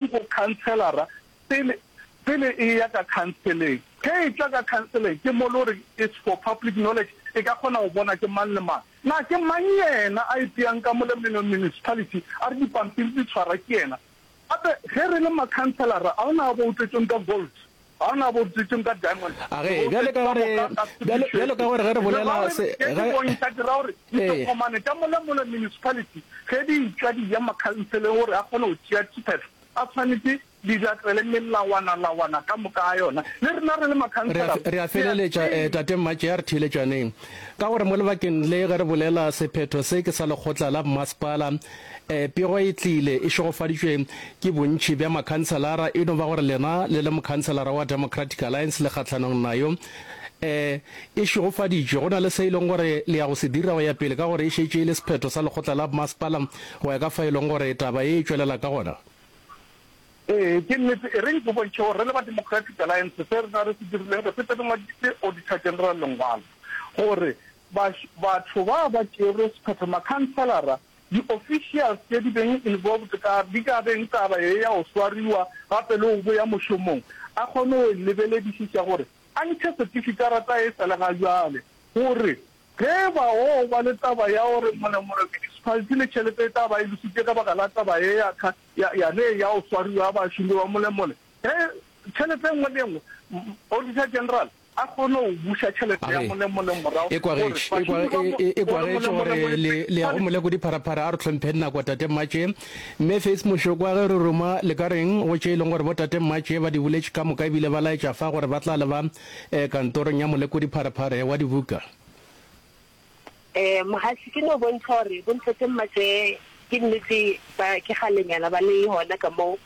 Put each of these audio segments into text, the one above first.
go khanselara pele pele e eya ka khanseleng. Ge e tla ka khanseleng, ke mo le gore it's for public knowledge, e ka kgona go bona ke mang le mang. Na ke mang yena a ipeyang ka mo le municipality a re dipampiri di tshwara ke yena? Gape ge re le makhanselara a o na a boutletšong ka gold. A ge, bjalo ka gore, bjalo, bjalo ka gore ge re bolela se, ge, re a, re a feleletša, eh, Tate Mmatšea, re theeletšaneng. Ka gore mo lebakeng le ge re bolela sephetho se ke sa lekgotla la bommasepala, Pego e tlile e šegofaditšwe ke bontši bja makhanselara, e no ba gore lena le le mokhanselara wa Democratic Alliance le kgahlanong nayo. E e šegofaditšwe, go na le se e leng gore le ya go se dira go ya pele ka gore e šetše e le sephetho sa lekgotla la bmasepala go ya ka fa e leng gore taba e e tšwelela ka gona. Ee, ke nnete. Ereng ke bontšhe gore re le ba Democratic Alliance se rena re se dirileng, re fete re ngwaditše Auditor General lengwalo gore batho ba ba tšerwe sephetho, makhanselara, Di officials tše di beng involved ka di ka beng taba ye ya go swariwa gape le go boya mošomong a kgone go e lebeledišiša gore a ntšhe setifikarata e sa le ga bjale gore ge e ba go ba le taba ya gore molemore municipality le tšhelete e tla ba e lositše ka baka la taba ye ya ka ya ya ne ya go swariwa ya bašomi ba molemole ge tšhelete engwe le engwe Auditor General a kgone go buša tšhelete ya molemolemo morago ekwa ge gore ekwa badimo ba ge mo- e- ekwa gore ge etšwe gore molemolemo e- le le ya go moleko dipharaphara a re tlhompheng nako tate mmatše mme face mošoko a ge re ruma le ka reng go tše e leng gore bo tate mmatše ba di boletše ka moka ebile ba laetša fa gore ba tla le ba um kantorong ya moleko dipharaphare wa dibuka Eh, mohaši ke no bontšha gore bontate mmatše ke nnete ba ke galenyana ba le gona ka mo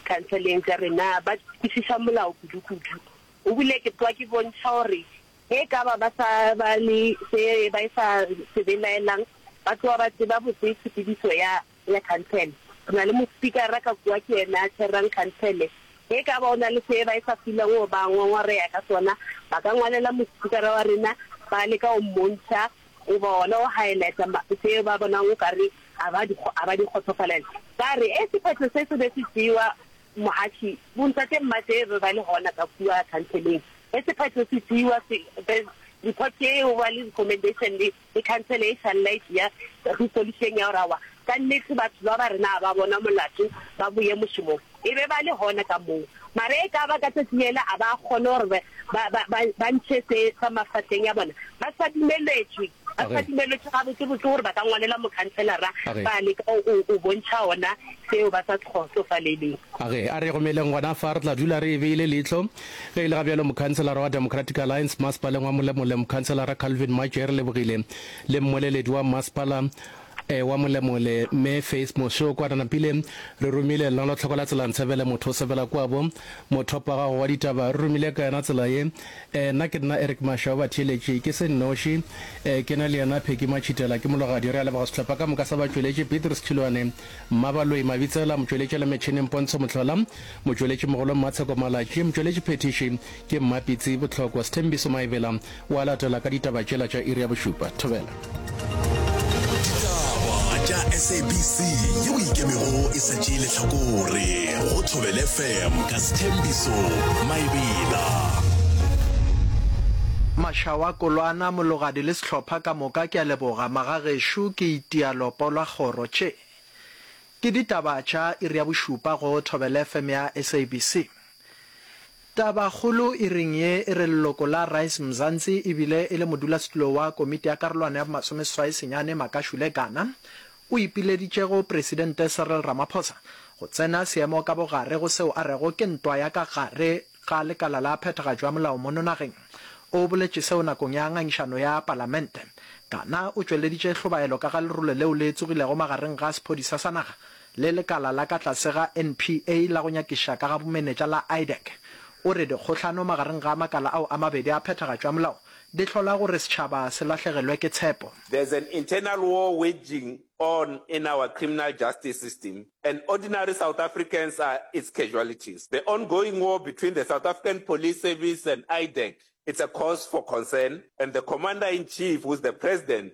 khanseleng tša rena ba kwešiša molao kudu-kudu O bile ke kwa ke bontšha gore ge e ka ba ba sa ba le se ba sa se belaelang, ba tloga ba tseba botse tshepedišo ya ya khansele. Re na le mospikara ka kua, ke yena a tshwerang khansele. Ge e ka ba o na le se ba sa filwang go ba ngongoreya ka sona, ba ka ngwalela mospikara wa rena, ba leka go mmontšha goba gona go highlighta ma, se ba bonang o ka re ga ba di, ga ba di kgotsofalela. Ba re, Ee, sephetho se se be se tšewa Mohathi, Bontate Mmatee be ba le gona ka kua khanseleng ge sephetho se tšeiwa se be report ye e oba le recommendation le le khansele e šalla e tšea resolutione ya gore aowa ka nnete batho ba ba rena ga ba bona molato ba boye mošomong. E be ba le gona ka moo mara e ka ba ka tšatši lele a ba kgone gore ba ba ba ba ntšhe se sa mafahleng a bona ba sa dumeletšwe. Batho ba dumelwetše gabotsebotse gore ba ka ngwalela mokhanselara ba leka go go bontšha gona seo ba sa kgotsofaleleng. A re, A re romeleng gona fa, re tla dula re e beile leihlo. Ge e le ga bjalo, mokhanselara wa Democratic Alliance masepaleng wa Molemole, Mokhanselara Calvin Maje, re lebogile le mmoleledi wa masepala, Ewa molemole me face moše o kwa re napile re romile lnalo tlhoko la tsela ntsebele motho o sebela kwabo mothopa gago wa ditaba re romile ka yona tsela ye eh nna ke nna Eric Masha wa batheeletši ke se nnoši eh ke na le yena Pheky Matšhitela ke mologadi re a leboga sehlopha ka moka sa batšweletši Petrus Tšhilwane Mmabaloi Mabitsela motšweletši la metšhineng Pontsho Motlhola motšweletši mogolo Mmatsheko Malatši motšweletši phethiši Ke Mmapitsi Bohlokwa. Sthembiso Maebela o a latela ka ditaba tšela tša iri ya bošupa. Thobela. Ditaba tša SABC yeo e ikemego e sa tšee lehlakore go Thobela FM ka Sthembiso Maebela. Mashawa, Kolwana, Mologadi le sehlopha ka moka ke a leboga magagešo ke itia lopo lwa kgoro tše ke ditaba tša iri ya bošupa go Thobela FM ya SABC. Tabakgolo e reng ye e re leloko la Rise Mzansi e bile e le modulasetulo wa komiti ya karolwana ya bomasomeseswai senyane Makashule Gana o ipileditšego Presidente Cyril Ramaphosa go tsena seemo ka bogare go seo a rego ke ntwa ya ka gare ga lekala la phethagatšo ya molao mono nageng. O boletše seo nakong ya ngangišano ya palamente. Gana o tšweleditše hlobaelo ka ga lerulo leo le tsogilego magareng ga sephodisa sa naga le lekala la ka tlase ga NPA la go nyakiša ka ga bomenetša la IDEC, o re dikgohlano magareng ga makala ao a mabedi a phethagatšo ya molao di hlola gore setšhaba se lahlegelwe ke tshepo. There's an internal war waging on in our criminal justice system and ordinary South Africans are its casualties. The ongoing war between the South African Police Service and IDEC, it's a cause for concern and the Commander-in-Chief who's the President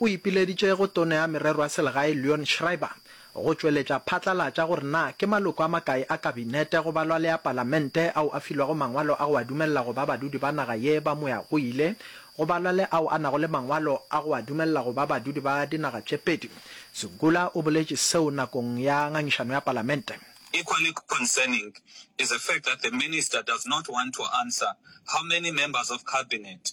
O ipileditše go Tono ya Merero ya Selegae Leon Schreiber go tšweletša phatlalatša gore na ke maloko a makae a Kabinete go balwa le a Palamente ao a filwego mangwalo a go a dumelela go ba badudi ba naga ye ba moyagoile go balwa le ao a nago le mangwalo a go a dumelela go ba badudi ba dinaga tše pedi. Segula o boletše seo nakong ya ngangišano ya Palamente. Equally concerning is the fact that the Minister does not want to answer how many members of Cabinet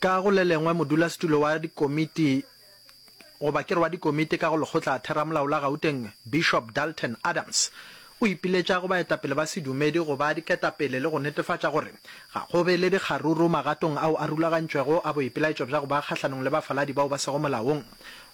Ka go le lengwe, modulasetulo wa dikomiti, goba ke re wa dikomiti ka go Lekgotla Theramolao la Gauteng, Bishop Dalton Adams, o ipiletša go baetapele ba sedumedi go ba diketapele le go netefatša gore ga go be le dikgaruru magatong ao a rulagantšwego a boipelaetšo bja go ba kgahlanong le bafaladi bao ba sego molaong.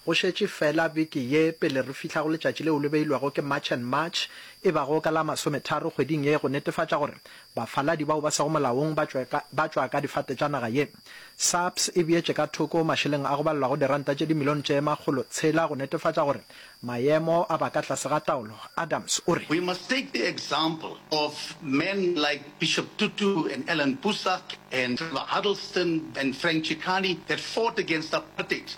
Go šetše feela beke ye pele re fihla go letšatši leo le beilwego ke March and March e bago ka la masometharo kgweding ye go netefatša gore Bafaladi bao ba sego molaong ba tšwa ka, ba tšwa ka difate tša naga ye. SAPS e beetše ka thoko mašeleng a go balelwago diranta tše dimilione tše makgolo tshela go netefatša gore maemo a ba ka tlase ga taolo. Adams o re. We must take the example of men like Bishop Tutu and Alan Busak and Trevor Huddleston and Frank Chikane that fought against apartheid.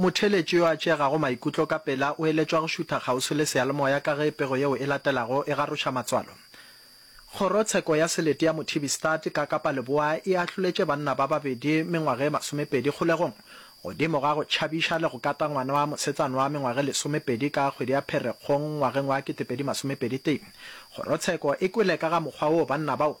Motheeletši yo a tšeegago maikutlo ka pela o eletšwa go šutha kgauswi le seyalemoya ka ge pego yeo e latelago e garoša matswalo. Kgorotsheko ya Selete ya Mothibistad ka Kapa Leboa e ahloletše banna ba babedi mengwaga e masomepedi kgolegong godimo ga go tšhabiša le go kata ngwana wa mosetsana wa mengwaga e lesomepedi ka kgwedi ya Pherekgong ngwageng wa ketepedi masomepedi tee. Kgorotsheko e kwele ka ga mokgwa woo banna bao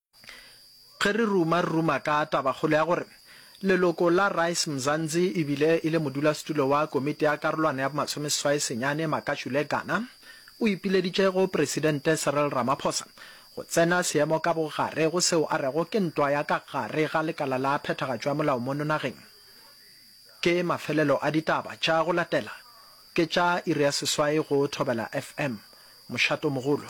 Ge re ruma, re ruma ka tabakgolo ya gore leloko la Rise Mzanzi e bile e le modulasetulo wa Komiti ya Karolwana ya Bomasomeseswai Senyane Makashule Gana o ipileditše go Presidente Cyril Ramaphosa go tsena seemo ka bogare go seo a rego ke ntwa ya ka gare ga lekala la phethagatšo ya molao mono nageng. Ke mafelelo a ditaba tša go latela ke tša iri ya seswai go Thobela FM. Mošato mogolo.